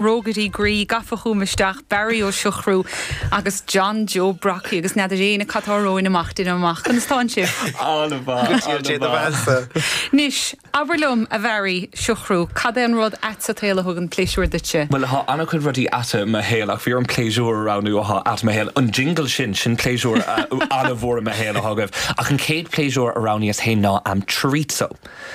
rógairí groí gafa chugam isteach, Barry Ó Siochrú agus John Joe Brockie, agus n'fheadar éinne cad tá romhainn amach, deinim amach. Conas atánn sibh? An-mhaith, an-mhaith. Go dtí an Dé Domhanda. Anois, abair liom, a Bharry Siochrú, cad é an rud ait sa tsaol a thugann pléisiúr duitse? Bhuel, tá an-chuid rudaí ait i mo shaol, ach bhí orm pléisiúr a roghnú atá ait i mo shaol. An jingle sin, sin pléisiúr an-mhór i mo shaol atá agaibh. Ach an chéad pléisiúr a roghnaíos fhéin ná em chorizo.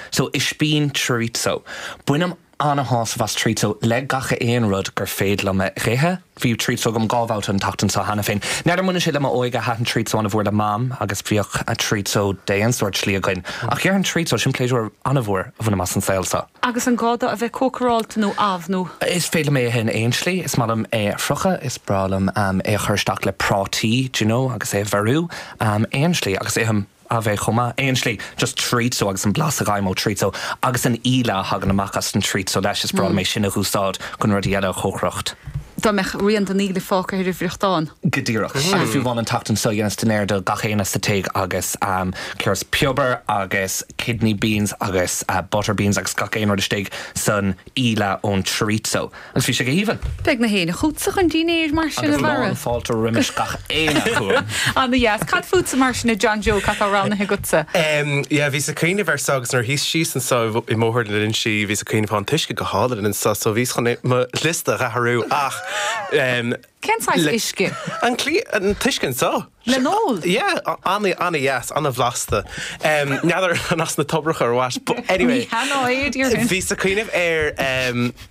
So, ispín chorizo. Bainim Ana-shásamh as chorizo le gach aon rud gur féidir liom a dh'ithe. Bhí chorizo agam dhá bhabhta an tseachtain seo cheana féin. N'fheadar an mbaineann sé le m'óige, thaitin chorizo an-mhór le Mam agus bhíodh chorizo d'aon sórt slí againn. Ach dhéarfainn chorizo, sin pléisiúr an-mhór a bhainim as an saol seo. Agus an gá dó a bheith cócaráilte nó amh nó? Is féidir liom é a ithe in aon slí. Is maith liom é a fhriochadh, is breá liom é a chur isteach le prátaí, d'you know, agus é a bheiriú. Aon slí, agus ithim. é amh chomh maith. Aon slí. Just chorizo agus an blas a gheibhim ó chorizo agus an íle a thagann amach as an chorizo leis. Is breá liom é sin a dh'úsáid chun rudaí eile a chócaireacht. Dá mbeadh rian den íle fágtha ar an bhfriochtán. Go díreach. Agus fiú amháin an tseachtain seo dheineas dinnéar do gach éinne sa tigh agus chuireas piobair agus kidney beans agus butter beans agus gach aon rud istigh san íle ón chorizo agus bhí sé go haoibhinn! Beidh gach éinne chugatsa chun dinnéir mar sin, a Bharra. Agus lán fáilte roimis gach éinne chugam. Ana dheas. Cad fútsa mar sin, a John Joe, cad tá roghnaithe agatsa? Yeah, bhíos ag cuimhneamh air so agus nuair a shuíos síos anso i mbóthar na Linsí bhíos ag cuimhneamh, thá an t-uisce go hálainn anso so bhíos chun mo liosta a dh'athrú ach eh. Cén saghas uisce? An cliath, an t-uisce anso. Le n-ól? Yeah, ana-dheas, ana-bhlasta. N'fheadar an as na toibreacha or what, but anyway. Ní hea ná ea, deirim. Bhíos ag cuimhneamh ar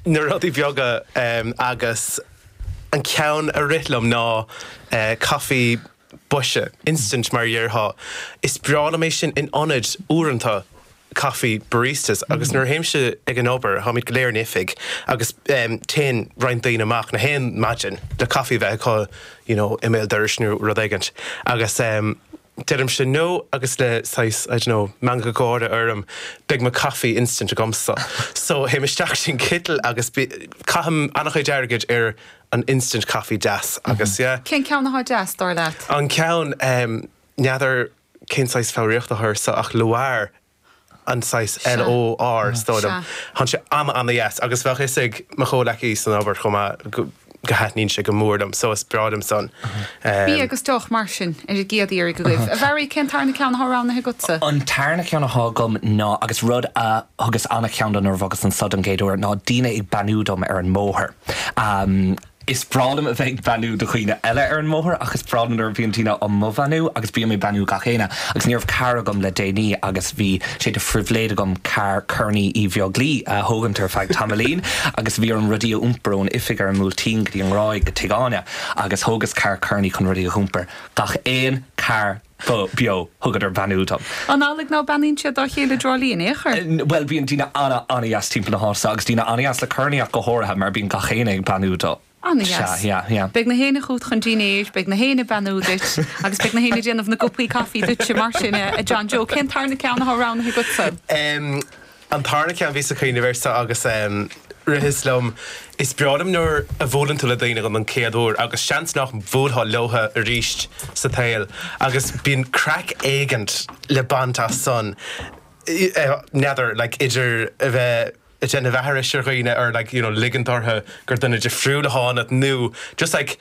na rudaí beaga agus an ceann a rith liom ná caife boise, instant mar a dhéarfá. Is breá liom é sin in ionad uaireanta coffee baristas agus nuair a théimse ag an obair táimid go léir in oifig agus téann roinnt daoine amach gach aon maidin le coffee a bheith acu you know i mbéal dorais nó rud éigint agus deirimse no agus le saghas I don't know meangadh gáire orm beidh mo coffee instant agamsa so théim isteach sin citeal agus caithim an-chuid airgid ar an instant coffee deas agus yeah. Cén ceann atá deas, dar leat? An ceann, em, n'fheadar cén saghas foghraíochta atá air so ach L'OR an saghas Sea. L O R is dóigh Sea. liom. Thán sé ana ana dheas agus bheadh fhios ag mo chomhleacaí san obair chomh maith go go thaitníonn sé go mór liom so is breá liom san. Bia Em, agus deoch mar sin ar an gcéad iarraidh agaibh. A Bharry, cén tarna ceann atá roghnaithe agatsa? An tarna ceann atá agam ná, agus rud a thugas ana-cheann dó nuair a bhogas anso don gcéad uair, ná daoine ag beannú dom ar an mbóthar. Am. Is breá liom a bheith ag beannú do dhaoine eile ar an mbóthar ach is breá liom nuair a bhíonn daoine á mo bheannú agus bím ag beannú gach éinne agus ní raibh carr agam le déanaí agus bhí sé de phribhléid agam carr Kearney Uí Bheaglaoi a thógaint ar feadh tamaillín agus bhí orm rudaí a iompar ón oifig ar an mBuailtín go dtí an nGráig go Tigh Áine agus thógas carr Kearney chun rudaí a iompar. Gach aon carr beo. Thugadar beannú dom. An amhlaidh ná beannaíonn siad dá chéile i dTrá Lí in aon chor? Bhuel, bíonn daoine ana, ana-dheas timpeall na háite, agus daoine ana-dheas le Kearney ach go háirithe, mar bíonn gach éinne ag beannú do. Ana-dheas. Sea, yeah, yeah. Beidh nach éinne chugat chun dinnéir, beidh nach éinne ag beannú duit, agus beidh nach éinne ag déanamh na gcupaí caifí duitse. Mar sin, a John Joe, cén tarna ceann atá roghnaithe agatsa? An tarna ceann, bhíos ag cuimhneamh air seo, agus rith sé liom, Is breá liom nuair a bhuaileann tú le daoine dhon chéad uair, agus seans nach mbhuailfeá leotha arís sa tsaol, agus bíonn craic éigint le baint as san, n'fheadar, like, idir a bheith ag déanamh aithris ar dhaoine, or like, you know, ligint orthu gur duine difriúil atá ionat, nó just like,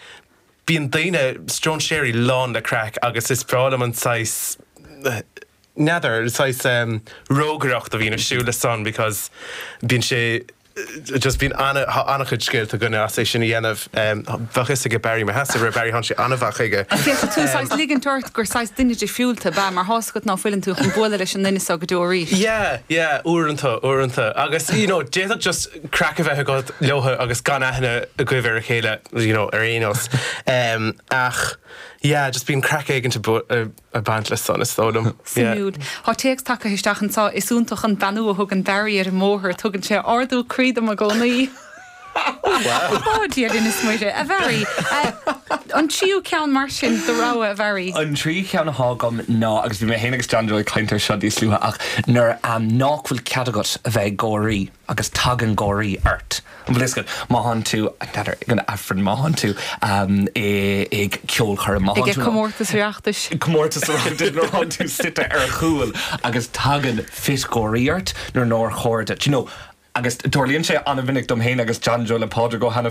bíonn daoine, stróinséirí, lán le craic, agus is breá liom an saghas, N'fheadar, saghas rógaireacht a bhíonn ar siúl le san because bíonn sé just bíonn ana, tá ana-chuid scéalta againne as é sin a dhéanamh. Bheadh 'fhios aige Barry Mheasa, rud a Barry thánn sé ana-mhaith chuige. Ach féach, tú ag saghas ligint ort gur saghas duine difriúil tú ab ea, mar thá's agat ná fuileann tú chun bualadh leis an nduine seo go deo arís. Yeah, yeah, uaireanta, uaireanta. Agus you know d'fhéadfadh just craic a bheith agat leotha agus gan aithne agaibh ar a chéile, you know, ar aon nós. Ach yeah, just bíonn craic éigint a, ag baint le san, is dóigh liom. Suimiúil. Tá téacs tagtha isteach anseo, is iontach an beannú a thugann Barry ar an mbóthar, tugann sé ardú croí dom i gcónaí. Ó, Dia linn is Muire, a Bharry. An tríú ceann mar sin do rogha, a Bharry? An tríú ceann atá agam ná, agus bhí mé féin agus John Joe ag caint air seo níos luaithe, ach nuair nach bhfuil cead agat a bheith ag gáirí. agus tagann gáirí ort. An bhfuil a fhios agat, má thánn tú ag an Aifreann, má thánn tú ag ceolchoirm, má thánn tú ag comórtas Oireachtais, má thánn tú suite ar chúl agus tagann fit gáirí ort nuair nár chóir duit, you know. Agus tarlaíonn sé an-mhinic dom féin agus John Joe le Pádraig Ó hAiniféin.